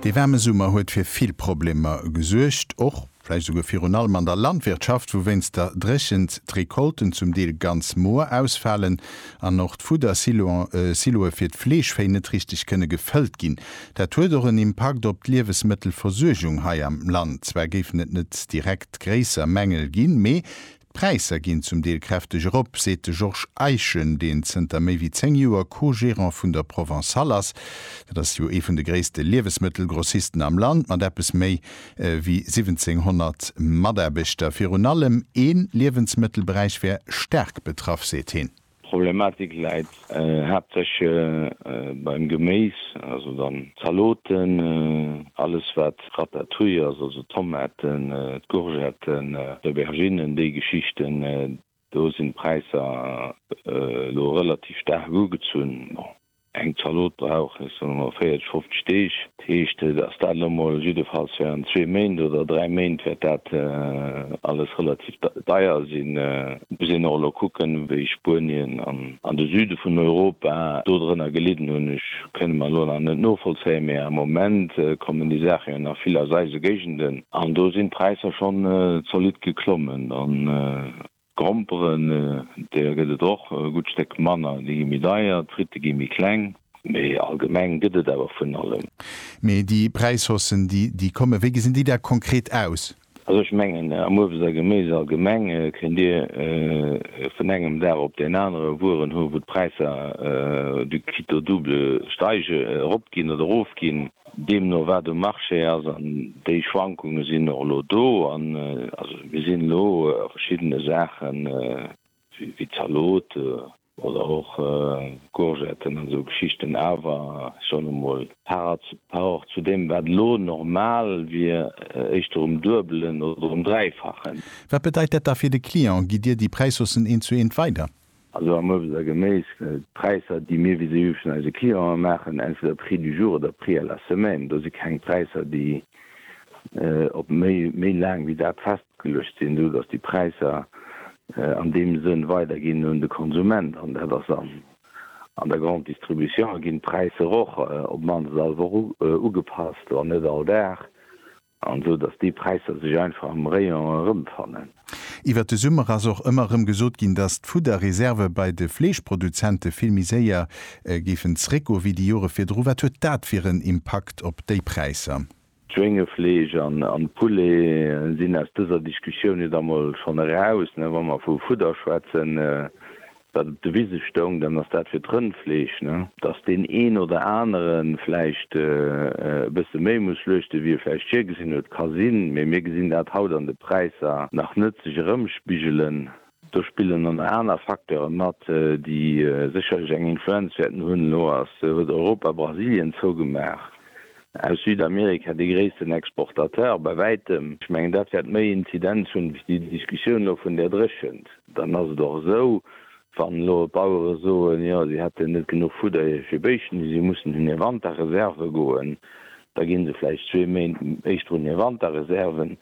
Dee waarme Summer huet fir vill Problemer gesuergt, och vläicht esouguer virun allem an der Landwirtschaft, wou wéinst der Dréchent d'Recolten zum Deel ganz moer ausfalen an och d'Fuddersiloe fir d'Fleeschvéi net richteg kënne gefëllt ginn. Dat huet och en Impakt op d'Liewesmëttelversuergung hei am Land. Zwar géifen et net direkt gréisser Mängel ginn, mee D'Präisser ginn zum Deel kräfteg erop, seet de Georges Eischen, deen zënter méi wéi 10 Joer Co-Gerant vun der Provençale ass. Dat ass jo ee vun de gréisste Liewesmëttelgrossisten am Land mat eppes méi wéi 1700 Mataarbechter. Virun allem ee Liewensmëttelberäich wär staark betraff, seet hien. D'Problematik läit haaptsächlech beim Geméis, also dann d'Zaloten, alles wat Ratatouille ass, also d'Tomaten, d'Courgetten, d'Auberginnen, déi Geschichten. Do sinn d'Präisser elo relativ staark ugezunn. Eng Zalot brauch, ech soen emol, 40, 50 Deeg. Dat heescht, dass dat elo mol jiddefalls während zwee Méint oder dräi Méint wäert dat alles relativ deier sinn. Et muss een och elo kucken, wéi Spuenien an de Süde vun Europa do drënner gelidden hunn. Ech kënne mer elo nach net novollzéien, mee am Moment kommen déi Saache jo nach vill aus eise Géigenden an do sinn d'Präisser schonn zolidd geklommen. D'Gromperen, där gëtt et och e gutt Stéck manner, déi gi méi deier, d'Fritte gi méi kleng. Mee allgemeng gëtt et awer vun allem. Mee déi Präishaussen, déi déi kommen, wéi gesinn déi da konkret aus? Also ech mengen, am Uebst a Geméis allgemeng kënnt Dir vun engem Dag op deen anere Wueren hu wou d'Präisser du quitte au double steige, eropginn oder erofginn. deemno wat um Marché ass, an déi Schwankunge sinn och elo do. An also mir sinn elo a verschiddene Saachen, wéi Zalote oder och Courgetten an esou Geschichten, awer ech soen emol par rapport zu deem wat elo normal wier, éischter um Duebelen oder um Dräifachen. Wat bedeit dat da fir de Client? Gitt Dir déi Präishaussen eent zu eent weider? Also am Uebst a Geméis, d'Präisser, déi mir vis-à-vis vun eise Clienten maachen, entweder Prix du jour oder Prix à la semaine, do si keng Präisser, déi op méi laang wéi dat festgeluecht sinn, esou datt déi Präisser an deem Sënn weiderginn un de Konsument. An dat ass an der Grande Distribution, ginn d'Präisser och op d'mannst all Woch ugepasst, wann net all Dag. An esou dass déi Präisser sech einfach am Rayon erëmfannen. Iwwert de Summer ass och ëmmer erëm gesot ginn, dass d'Fudderreserve bei de Fleeschproduzente vill méi séier géifen zréckgoe wéi déi Jore virdru. Wat huet dat fir en Impakt op déi Präisser? D'Schwéngefleesch an de Poulet sinn aus dëser Diskussioun jo da mol schonn eraus, wa mer vu Fudder schwätzen. Wat op de Wise stoung, dann ass dat fir d'Rëndfleesch, ne? Dass deen een oder anere vläicht e bësse méi muss schluechte wéi e vläicht virgesinn huet, ka sinn, mee mir gesinn dat haut an de Präisser nach net sech erëmspigelen. Do spillen dann nach aner Facteure mat, déi sécherlech eng Influenz wäerten hunn. Elo ass, huet Europa Brasilien zougemaach, aus Südamerika dee gréissten Exportateur bei wäitem. Ech mengen dat wäert méi Inzidenz hunn wéi déi Diskussioun elo vun där Dréchent. Dann ass et och esou, wann elo d'Bauere soen, jo si hätten net genuch Fudder fir Béischten, déi si mussen un hir Wanterreserve goen, da gi se vläicht zwee Méint éischter un hir Wanterreserven.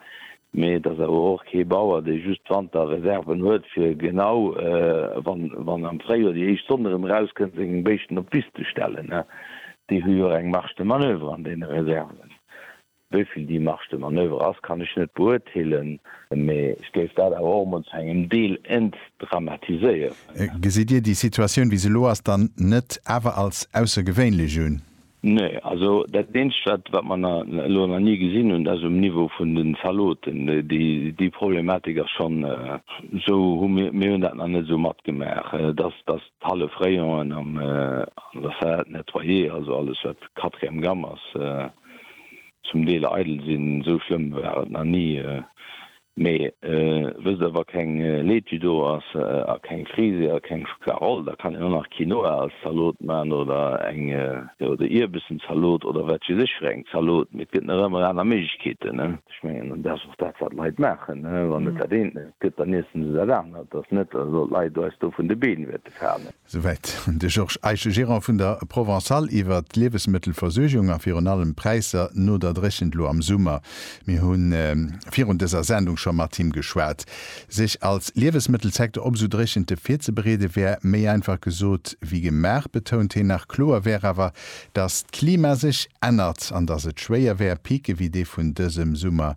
Mee et ass awer och kee Bauer, dee just Wanterreserven huet, fir genau wann am Fréijoer déi éischt Sonn erëm erauskënnt, seng Béischten op d'Wiss ze stellen. Déi hu jo och eng Marge de manoeuvre an deene Reserven. Wéi vill déi Marge de manoeuvre ass, kann ech net beurteelen, mee ech géif dat awer och emol zu engem Deel entdramatiséieren. Gesitt Dir déi Situatioun, wéi se elo ass, dann net awer als aussergewéinlech un? Nee. Also dat Eenzegt, wat, wat mer elo nach ni gesinn hunn, dat ass um Niveau vun den Zaloten. Déi Problematik ass schonn esou, hu mir, mir hunn dat nach net esou matgemaach, dass, dass d'hallef Rayonen an der Salade nettoyée, also alles, wat quatrième gamme ass, zum Deel eidel sinn. Esou schlëmm war et nach ni. Mee wësst der, wa keng Laitue do ass a keng Frise a keng Schokla-Roll, da kann een och nach Quinoa als Zalot man oder eng oder Ierbessen-Zalot oder wat weess ech fir eng Zalot. Mee et gëtt nach ëmmer aner Méiglechkeeten. Ech mengen, an dat ass och dat, wat d'Leit maachen. Wann et dat eent net gëtt, dann iessen se dat anert. Et ass net, dass elo d'Leit eis do vun de Been wäerte falen. Souwäit de Georges Eische, Gerant vun der Provençale iwwert d'Liewesmëttelversuergung a virun allem d'Präisser no der Dréchent lo am Summer. Mir hu virun dëser Sendung scho mat him geschwat. Sech als Liewesmëttelsecteur op esou Dréchente virzebereede wär méi einfach gesot wéi gemaach, betount hien nach. Kloer wär awer, datt d'Klima sech ännert an datt et schwéier wär, Picë wéi dee vun dësem Summer